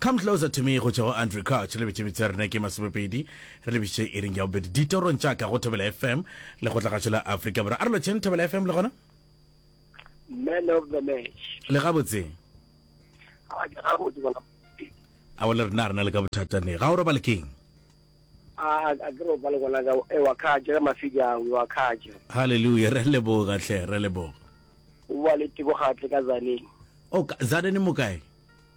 Come Closer to Me go tšwa go Andrew Couch le betše metse ya rena ke masomepedi re lebišitše iring ya bobedi ditorong tša ka go Thobela FM le go tlagatšo la Afrika Borwa. A re lotšheng Thobela FM le gona? Man of the match. Le gabotse? A ke gabotse bona. A o le rena rena le ka bothata ne. Ga o robale keng? A a ke robale gona ka e wa khaje ka mafija wa khaje. Hallelujah re leboga hle re leboga. O wa le tiko gatle ka zaneng. O ka zaneng mo kae?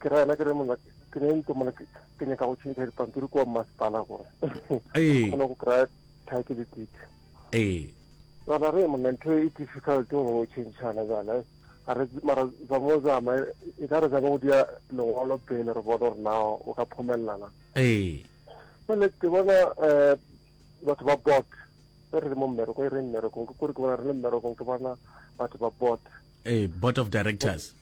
Ke ra yena ke re mona ke ne ntse mona ke ke nyaka go tšhentšha dipampiri kwa mmasepala gore Ee. kgona go kry-a title deed Ee. bana re monna ntho e difficult go tšhentšhana bana a re mara zamo zama e ka re zama go dia lengwalo pele re bone gore na o ka phomelelana Ee. jale ke bona um batho ba bot e re le mo mmereko e re mmerekong ke kore ke bona re le mmerekong ke bona batho ba bot Ee, board of directors.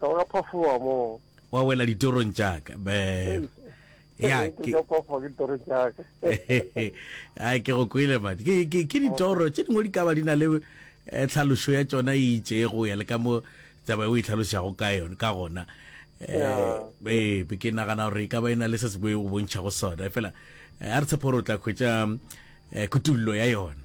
Ka wa phafowa moo. Wa wela ditorong tša ka. Be. Ya ke ka phafowa ke ditoro tša ka. Ai ke go kwele man. Ke ke ke ditoro tše dingwe di ka ba di na le eh, tlhalošo ya tšona e itšego ya le ka mo taba e o e tlhalošago ka yone ka gona. Yeah. Eh, be ke nagana gore e ka ba e na le se se boe o bontšhago sona fela eh, a re tshepo gore o tla hwetša eh, kutullo ya yona.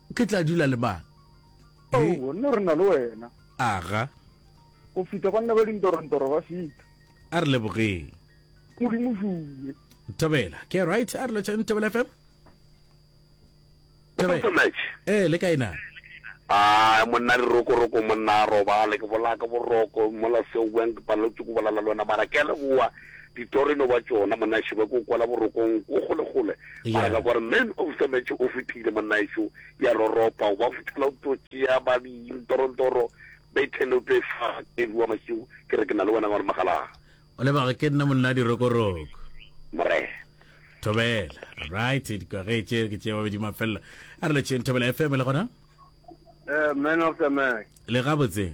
Ke tla dula le mang? He. Oh, gonna re na le wena. Aga. Go fita banna ba dintorontoro ba fita. A re lebogeng. Modimo šume. Thobela, ke right a re lotšhane Thobela FM? Thobela. Eh, le kae na? Ah, monna di roko roko monna a robale ke bolaka boroko mola seo buang ke paletswe ke bolala le wena mara ke a leboa. Ditoreno ba tšona, monnaešo ba ko kwala borokong ko kgolekgole, mara ka kwa re man of the match o fetile, monnaešo ya roropa, o ba fothela o tlo tšea ba di ntorontoro, Bethel o tlo e fa Kevi wa Mašiu, ke re ke na le wena ngwana Magalaa. O lebage ke nna monna dirokoroko. Morena. Thobela. Right, di kwa ge tše ke tše babedi mafella. A re le tšeng Thobela FM le gona? Eh, man of the match. Le gabotse.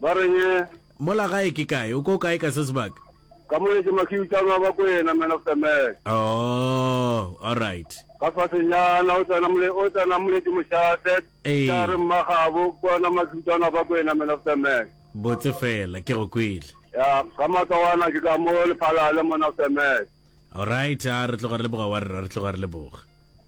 Ba reng eh? Mola gae ke kae? O ko kae ka se sebaka? Ka mone ke Makiutano a Bakwena, Man of the Match. Oh, alright. Ka fasenyana o tsena mole, o tsena mole ke Moshate. Ee. Ka re Mmagabo, ke ona Makiutano a Bakwena, Man of the Match. Botse fela, ke go kwele. Ya, ka matsowana ke ka mo Lephalale, Man of the Match. Alright, a re tloga re leboga wa rra, re tloga re leboga.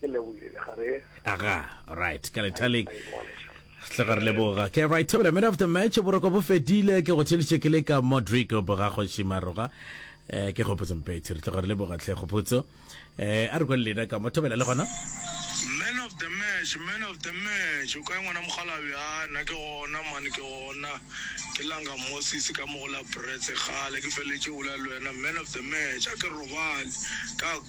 ke lebogile ga re aga right ka lethaleng tle ga re leboga ke right table man of the match boroko bo fedile ke go tšheliše ke le ka modric boga kgoši maroga eh ke kgopotso mpetši re tle ga re leboga tlhe kgopotso eh a re kwele lena ka mo thobela le gona man of the match man of the match o kae ngwana mogalabi a nna ke gona mane ke gona ke langa moses ka mo go la bretse gale ke feletše ola le wena man of the match a ke robale ka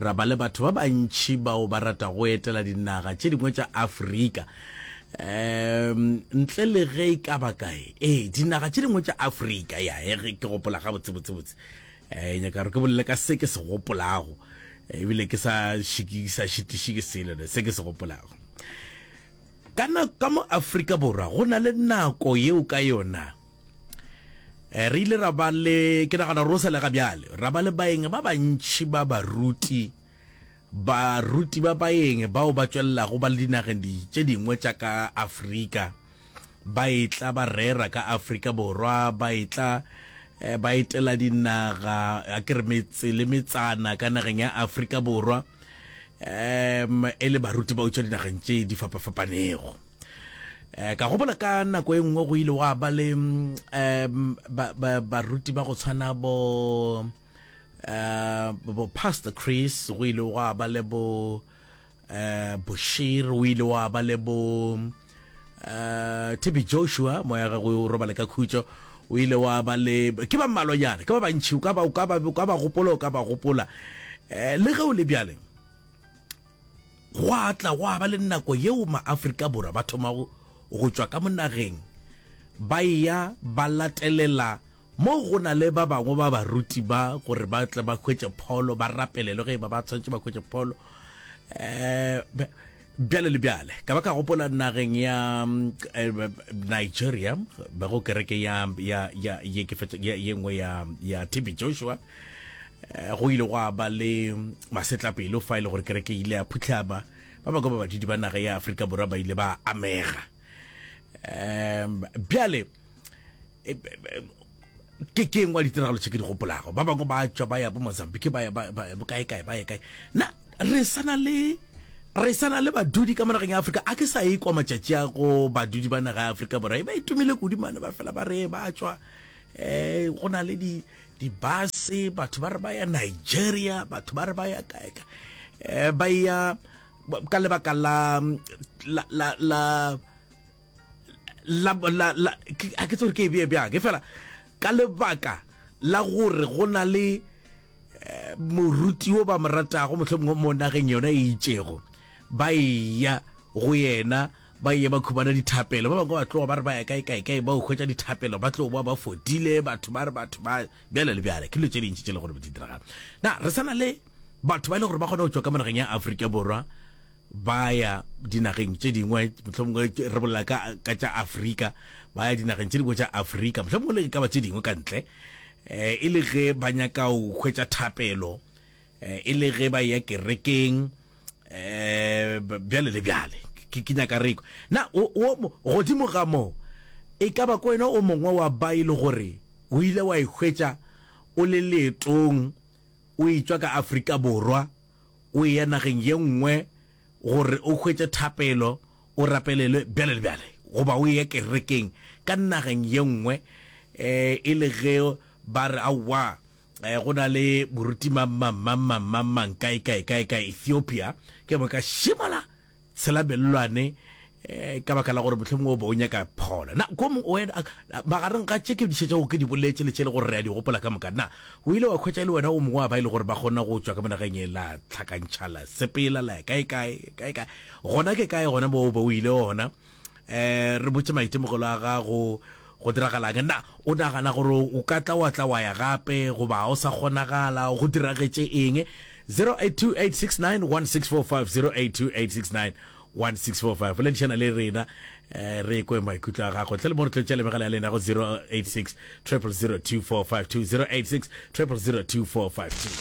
Ra ba le batho ba bantši bao ba rata go etela dinaga tše dingwe tša Afrika. Um, ntle le ge e ka ba kae, ee, dinaga tše dingwe tša Afrika, ya e ge ke gopola ga botse botse botse. Eh, nyaka gore ke bolele ka se ke se gopolago, eh, ebile ke sa šikisa šitiši ke selo ne se ke se gopolago. Kana ka mo Afrika Borwa go na le nako yeo ka yona Eh, re ile ra ba le ke nagana ro selega bjale ra ba le baeng ba bantšhi ba baruti baruti ba baeng bao ba tšwelelago ba le dinageng tše dingwe tša ka afrika ba etla ba rera ka afrika borwa ba etla eh, ba etela dinaga a ke re metse le metsana ka nageng ya afrika borwa um e le baruti ba utšwa dinageng tše di fapafapanego um ka gopola ka nako e nngwe go ile wa ba le um baruti ba go tshwana bo um bo pastor chris go ile wa ba le bo um boshir o ile wa ba le bo um tebe joshua moya gagwe o robale ka khutso o ile wa ba le ke ba mmalonyana ke ba bantšhi o ka ba gopola o ka ba gopola um le ge o le bjaleng Gwa tla gwa ba le nako yeo maAfrika Borwa ba thomago go tšwa ka mo nageng ba eya ba latelela mo go na le ba bangwe ba baruti ba gore ba tle ba hwetše pholo, ba rapelelwe ge e ba ba tshwanetše ba hwetše pholo, um bjale le bjale. Ka ba ka gopola nageng ya eh, Nigeria, bego kereke ya, ya, ya, ye, ke fetša, ye, ye nngwe ya, ya TB Joshua, Eh, go ile gwa ba le masetlapelo fa e le gore kereke ile ya phutlhama ba bangwe ba badidi ba naga ya aforika borwa ba ile ba amega um bjale eh, eh, ke ke ngwa ditiragalo tse ke di gopolago ba bangwe ba tswa ba ya bo mozambique ba ya kae kae ba ya kae na re sana le re sana le badudi ka monageng ya aforika a ke sa e kwa matšatši a go badudi ba naga ya aforika borwa e ba itumile e kudimane ba fela ba re ba tswa um go na le dibase batho ba re ba ya nigeria batho ba re ba ya kaeka um ba ya ka lebaka la la la la la la la a ke tsore ke e bee bjang ke fela ka lebaka la gore go na le eh, moruti o ba mo ratago mohlomongwe mo nageng yona e itšego ba eya go yena Ba yye ba khubana dithapelo, ba bangwe ba tloga ba re ba ya kae kae kae, ba o hwetša dithapelo ba tlo boa ba fodile, batho ba re batho ba bjale le bjale. Ke dilo tše dintši tše e lego gore be di diragala. Na re sa na le batho ba e le gore ba kgona go tšwa ka mo nageng ya Afrika Borwa ba ya dinageng tše dingwe, mohlomongwe re bolela ka ka tša Afrika, ba ya dinageng tše dingwe tša Afrika, mohlomongwe le e ka ba tše dingwe ka ntle, um e le ge ba nyaka go hwetša thapelo? eh, e le ge ba ya kerekeng um bjale le bjale ke nyaka reko na godimo ga moo e ka ba ko wena o mongwe wa ba e le gore o ile wa ikgwetsa o le leetong o etswa ka aforika borwa o eya nageng ye nngwe gore o kgwetse thapelo o rapelelwe bjale le bjale goba o ye kerekeng ka nageng ye nngwe um e le ge ba re aowa Eh, go na le moruti mammammammammammang kae kae kae ka ethiopia ke bo ka šimala tshela mellwane eh, ka baka la gore mohlomong o be o nyaka phola na ko mong wena a- a- magareng ga tše ke dišetša go ke di boletše le tše e le gore re a di gopola ka moka na o ile wa khwetša e le wena o mongwe wa ba e le gore ba kgona go tšwa ka monageng e la tlhakantšha la sepela la ya kae kae kae kae gona ke kae gona bo o be o ile gona um re botse maitemogelo a gago go diragalang na o nagana gore o ka tla wa tla wa ya gape goba o sa kgonagala go diragetše eng 0828691645 0828691645 ledišana le rena eh, re kwe maikutlo a gago tle le mo re tlotša le megala ya lena go 086 0002452 086 0002452